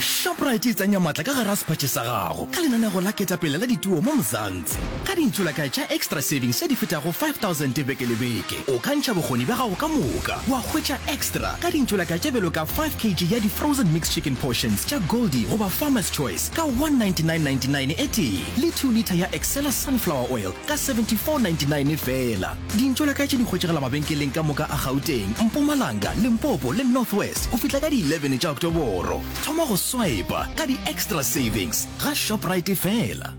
Shoprite e tsenya matla ka gara sephatše sa gago ka lenanego la ketapele la dituo mo Mzansi. Ka ditsulakae tša Extra Savings tše di fetago 5000 beke le beke, o ka ntšha bokgoni bja gago ka moka wa hwetša extra ka dintsulakae tše bjalo ka 5 kg ya di-frozen mixed chicken portions tša Goldie goba Farmer's Choice ka 199.99 e tee le 2 litha ya Excella sunflower oil ka 74.99 feela. Dintšo la ka tše di hwetšegela mabenkeleng ka moka a Gauteng, Mpumalanga, Limpopo le North West go fihla ka di 11 tša Oktoboro. Thoma go swipa ka di-extra savings ga Shoprite fela.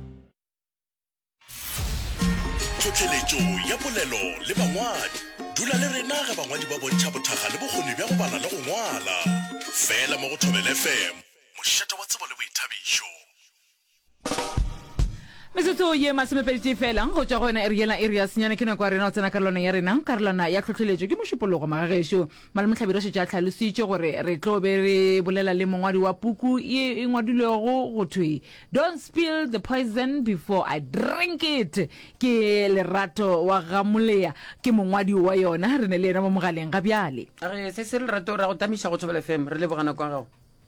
Tlhohleletšo ya polelo le bangwadi. Dula le rena ge bangwadi ba bontšha bothaga le bokgoni bja go bala le go ngwala. Fela mo go Thobela FM, mošate wa tsebo le boithabišo. metsotso ye masomepedi fela go tšwa go yona ere yela ere ya senyane ke nako ya rena go tsena karolwana ya rena karolwana ya tlhotlheletšo ke mošupologo magagešo malemotlhabedi o šetše a tlhalositše gore re tlo be re bolela le mongwadi wa puku ye e ngwadilwego go thwe don't spill the poison before i drink it ke lerato wa gamoleya ke mongwadi wa yona re ne le yena mo mogaleng ga bjale re se se lerato ra go tamiša go thobela fm re lebogana kwa gago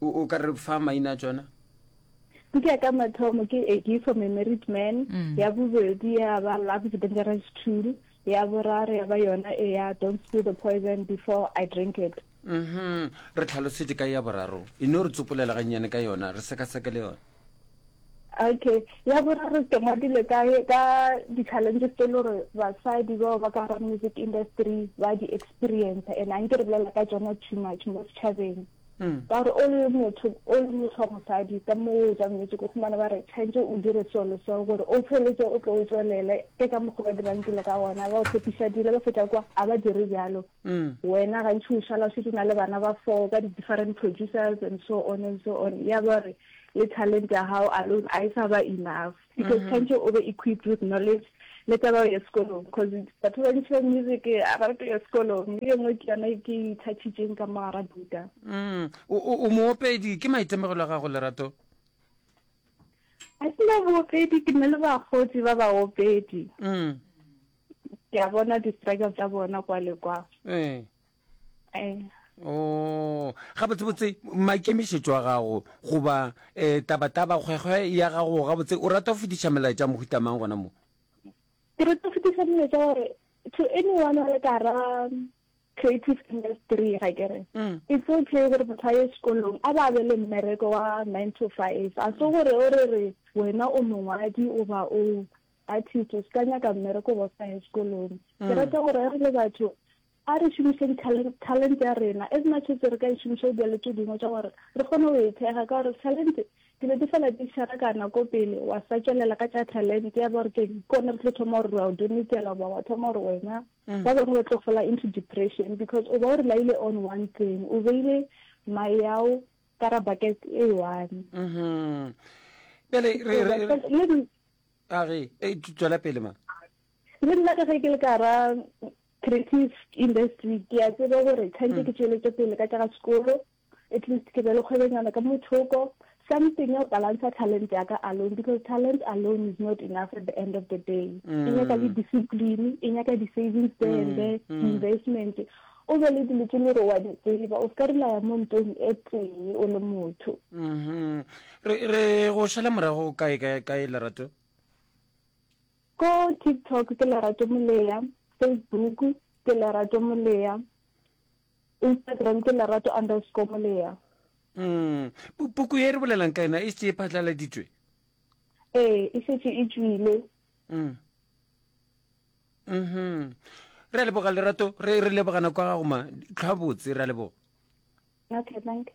o o ka re fa maina a tsona Puku ya ka mathomo ke A Gift from a Married Man, mm. ya bobedi ya ba Love is a Dangerous Tool, ya boraro ya ba yona e ya Don't Spill the Poison Before I Drink It. Mm -hmm. Re tlhalosetse ka ya boraro, e no re tsopolela gannyane ka yona, re sekaseke le yona. Okay. Ya boraro ke ngwadile ka ka di-challenges tse le gore basadi bao ba ka ga music industry ba di-experience and a nke re bolela ka tsona too much mo setšhabeng mm. ka gore o le motho o le motho wa mosadi ka mo o jang metse ko fumana ba re tshwanetse o dire seo le seo gore o tsheletse o tlo o tswelele ke ka mokgwa ba dirang dilo ka gona ba o tshepiša dilo ba feta kwa a ba dire jalo mm. wena gantši o šala o setse na le bana ba four ka di-different producers and so on and so on ya ba re le talent ya gago alone a e sa ba enough because mm-hmm. tshwanetse o be equipped with knowledge le taba ya sekolong because batho ba ntšha music a ba rate ya sekolong mme e nngwe ke yona e ke ithatšitšeng ka mogara buka mm. o moopedi ke maitemogelo a gago lerato a ke na boopedi ke na le bagotsi ba baopedi mm. ke a bona di-struggle tsa bona kwa le kwa ee. o oh, gabotsebotse maikemišetšo a gago goba um tabataba kgwekgwe ya gago gabotse o rata go fetiša melaetša mohutamang gona mo ke rata go fetiša melaetša gore to anyone a le kara creative industry ga kere mm. it's okay gore motho a ye sekolong a ba be le mmereko wa nine to five a se gore o re re wena o mongwadi o ba o artist o se ka nyaka mmereko ba sa ye sekolong ke mm. rata gore re le batho A re šomiše dithalente, talente, ya rena. As much as re ka e šomiša go dira le tše dingwe tša gore re kgone go e thekga, ka gore dithalente dilo di fela di šarakana ko pele, wa sa tšwelela ka tša talente ya ba gore keng, ke gona re tlo thoma gore re a o donetela goba wa thoma gore wena. Ba bangwe ba tlo fela into depression because o ba o relaile on one thing, o beile mae yao ka ra bucket e one. Mhm. Bjale re re re Le a re e tswela pele ma. le nna ka ge ke le ka ra Creative industry ke a tseba gore tshwanetse ke tšweletše pele ka tša ga sekolo at least ke be le kgwebenyana ka mothoko something ya balansa talent ya ka alone because talent alone is not enough at the end of the day e nyaka le discipline e nyaka di-savings there and there investment o be le dilo tse le gore wa di tseba o ka rilaya mo ntong e tee o le motho re go šala morago kae kae lerato Ko TikTok ke Lerato Molea, Facebook ke Lerato Molea, Instagram ke Lerato underscore Molea. Mm. Puku ye re bolelang ka yona e se e phatlaladitswe? Ee, e setse e tswile. Mm. Mhm. Re leboga Lerato, re re lebogana kwa gago ma tlhwa botse, re leboga. Okay, thank you.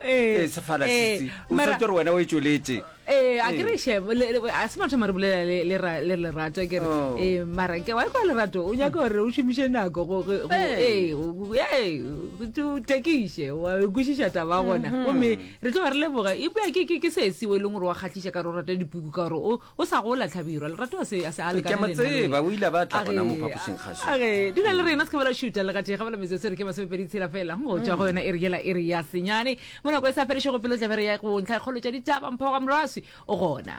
Ee, sefala ee, sisi. O mara- swetše gore wena o e tšweletše. ee a ke re shebo le- le- a se matho mare bolela le- le ra- le lerato a ke re Oh. ee mara ke wa kwa lerato o nyaka gore o šomiše nako go- go- go- Hey. ee, o- o- ee, o te- o tekiše wa e kwešiša taba gona gomme re tlo ba re leboga ebja ke ke- ke se sewe e leng gore wa kgatlhiša ka gore o rata dipuku ka gore o- O sa gola, Hlabirwa. Lerato a se, a se a lekane le nna le wena. Ke a mo tseba. O ile a ba a tla gona mo phapošing kgašo. A re, Dula le rena, se ke ba la šuta. Le gatee ga ba la metsotso e re ke masomepedi tshela fela. Mo tšwa go yona e re yela e re ya senyane. Mo nako e sa felešego pelo tla be re ya go ntlha kgolo tša ditaba. Mpho ga Moraswi o gona.